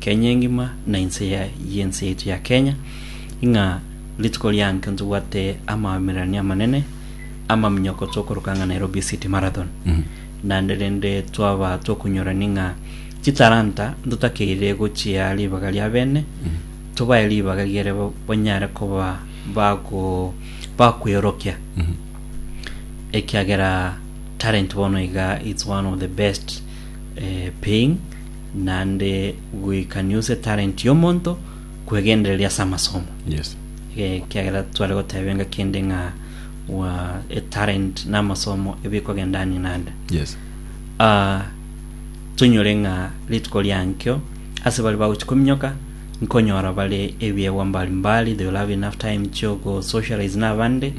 Kenya engima na inse y'ense yaito ya Kenya, ing'a rituko rianke ntobwate amaomererania amanene amaminyoko tokoroka ng'a Nairobi City Marathon. Naende rende twaba tokonyorani ng'a chitalanta ntotakeire gochia ribaga ria bene, tobae ribaga riere ba- banyare koba bago bakweorokia. Ekiagera talent bono iga it's one of the best eh, paying naende goika niuse talenti y'omonto kwegendereria ase amasomo Yes. Eh, kiagera tware goteba enga kende ng'a wa etalent na amasomo ebikogenda ani nande Yes. Ah, tonyore ng'a rituko riankio ase bari bagochi kominyoka nkonyora bare ebiegwa mbalimbali they will have enough time chiogo socialize na abande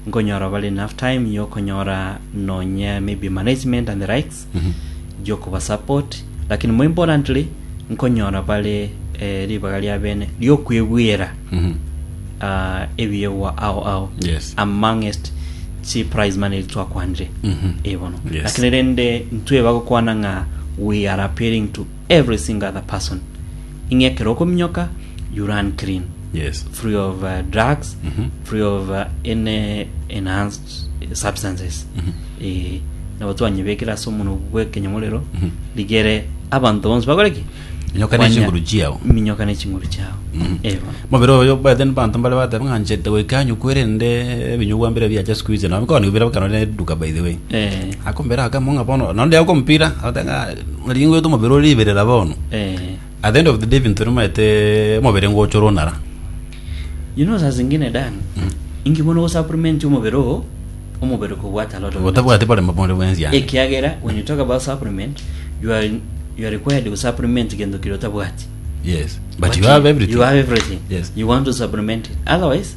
nkonyora bare enough time yokonyora nonye maybe management and the likes gi'okobasupport, lakini more importantly nkonyora bare eh, ribaga ria bene riokwebwera ah, ebiegwa ao ao Yes. amongst chi prize money twakwanire ebono Yes. lakini rende ntweba gokwana ng'a we are appealing to every single other person ing'e ekero okominyoka you run clean yes free of uh, drugs free of uh, any enhanced substances eh, nabo twanyebekire ase omono bw'ekenyamorero rigere abanto bonsi bakore ki Minyoka ne Kwanya- chinguru chiao. minyoka ne chinguru chiao Mhm. Eh, bono. mobere oyo baete banto mbare bateba ng'a nchete goika anyukwe rende ebinyugwa mbire biacha sikuizi nabo koni bire bakano ne duka by the way Eh, akombera akamwa ng'a bono nonde akompira atenga ringwe to mobere ori iberera bono eh, At the end of the day binto nimaete omobere ngochora onara. You know saa zingine Dan, inki bono gosupplement omobere oo, omobere kobwate a lot of Gotabwati bare mabore bwensi ande. ekiagera when you talk about supplement you are, you are required to supplement gento kiri otabwati Yes. But you have everything. you have everything Yes. you want to supplement it otherwise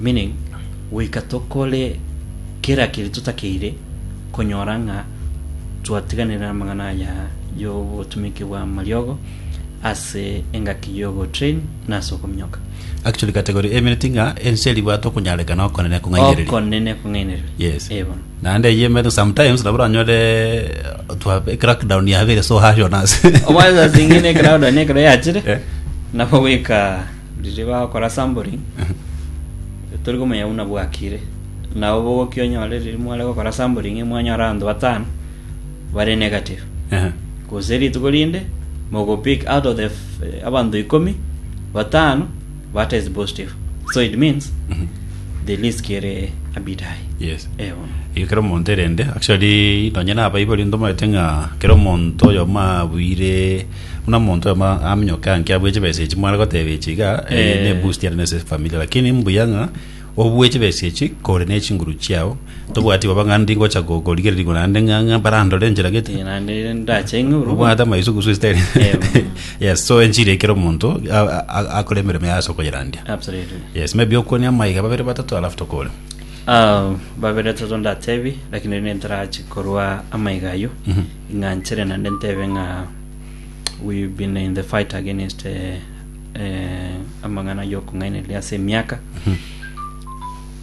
Meaning, Goika tokore kera keria totakeire konyora ng'a twatiganire namang'ana aya y'obotumiki bw'amariogo ase engaki y'ogotrain na ase okominyoka. Actually category emereti ng'a ense eri bwate okonyarekana okonene kong'ainereria. Okonene kong'ainereria. Yes. Eh, bono. Naende eyio emereti sometimes nabo oranyore twa crackdown yabeire so harsh on us. Omwana zingine crowd ne kero yachire. Eh. Nabo goika Riria bagokora sampling, tori komanya buna bwakire. Nabo bogokia onyore riria mware gokora sampling, mwanyora abanto batano bare negative. Ehe. Gose rituko rinde, mogo pick out of the f- eh, abanto ikomi, batano batest positive. So it means, the risk ere a bit high. Yes. Eh, bono. Igo kera omonto erende actually nonye nabaibori ntomanyete ng'a kera omonto oyomo abuire Buna omonto oyomo aminyoke anki abue chibesa echi mware goteba echi iga eh, Eh. ne boost yane nese familia lakini mbuya ng'a obue chibesa echi kore ne chinguru chiao tobwati baba ng'a ndi ngocha go- gorigererigwa naende ng'a ng'a barandore enchera gete Eh, naende ndache ing'uru obwate amaisugusu esitari Em. yes so enchiri ekero omonto a- a- a- akore emeremo yaye ase okoyerandia absolutely yes maybe okwonia amaiga babere batato alafu tokore Ah, babere toto ndatebi lakini rende ntarachi korwa amaiga ayio Mhm. Ing'anchere naende ntebe ng'a we have been in the fight against eh, eh, amang'ana y'okong'ainereria ase emiaka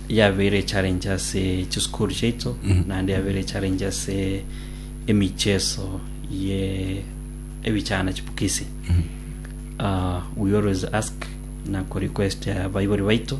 yabeire challenge ase chisukuru chiaito naende yabeire challenge ase emicheso ye ebichana chipukisi uh, we always ask na kurequest abaibori baito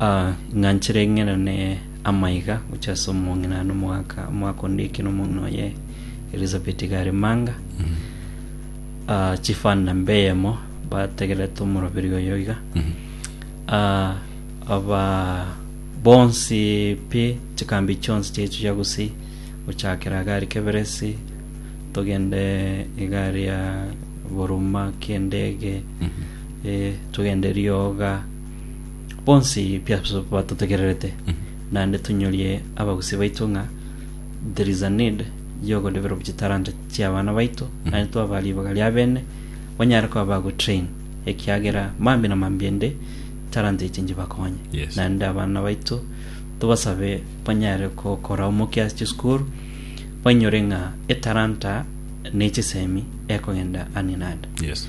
Ah, ing'anchire ing'enene amaiga gocha ase omong'ina na omogaka omogaka onde eke na omong'ina oye Elizabeth gare manga Ah, chifanda mbeyemo bategerete omoroberi oyo iga Ah, aba bonsi pi chikambi chionsi chiaito chia gusii gochakera gari keberesi togende egari ya boruma kiendege Ee, togende rioga bonsi piaso batotegererete, naende tonyorie abagusi baito ng'a there is a need y'ogoreberwa chitalanta chi'abana baito, naende twabaa ribaga ria bene banyare koba bagotrain, ekiagera mambia na mambia ende talanta echi nchibakonye. Yes. Naende abana baito tobasabe banyare gokora omokia ase chisukuru, bainyore ng'a etalanta ne chisemi ekogenda ani nande. Yes.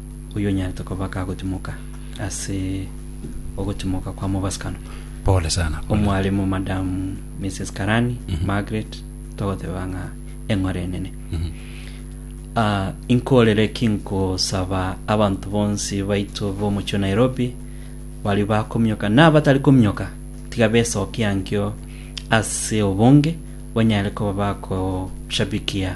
Oyonyarete koba kagotimoka ase ogotimoka kwa mobasikano. Pole sana. Pole. Omwalimu Madam Mrs. Karani Margaret togoteba ng'a eng'ore enene. Ah, inkorere ki nkosaba abanto bonsi baito b'omochie o Nairobi bari bakomioka na abatari komioka tiga besokia nkio ase obonge banyare koba bakoshabikia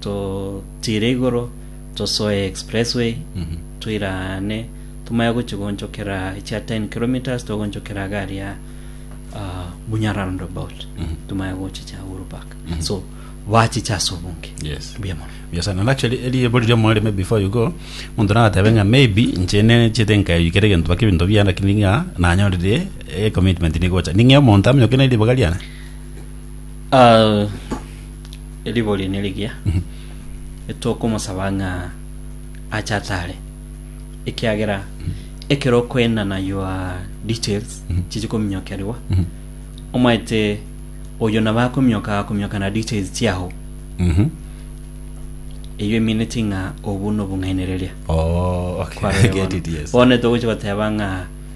Totiire igoro, tosoe expressway, toira aane, tomanye gochia goonchokera echia 10 kilometres, togoonchokera gari ya ah, Munya roundabout, tomanye gochicha Uhuru Park. So, bachicha ase obonge. Yes. Mbuya mono. Yes, and nacho eri- eribo riria omorore maybe before you go omonto nagatebe ng'a maybe inche nenchete nkaiyukera egento mpaka ebinto biane lakini ng'a nanyorire ecommitment nigocha ning'ee omonto amonyoke neriboga riane Ah, Eribo riane rigiya, etokomosaba ng'a ache atare, ekiagera ekero okoendana your details chiche kominyokerigwa, omaete oyo nabo akominyoka akominyoka na details chiago, Mhm. eyio emineti ng'a obwo nobong'ainereria. Oh, okay. Kwarebe I get bono. it, yes. Bono togochi goteba ng'a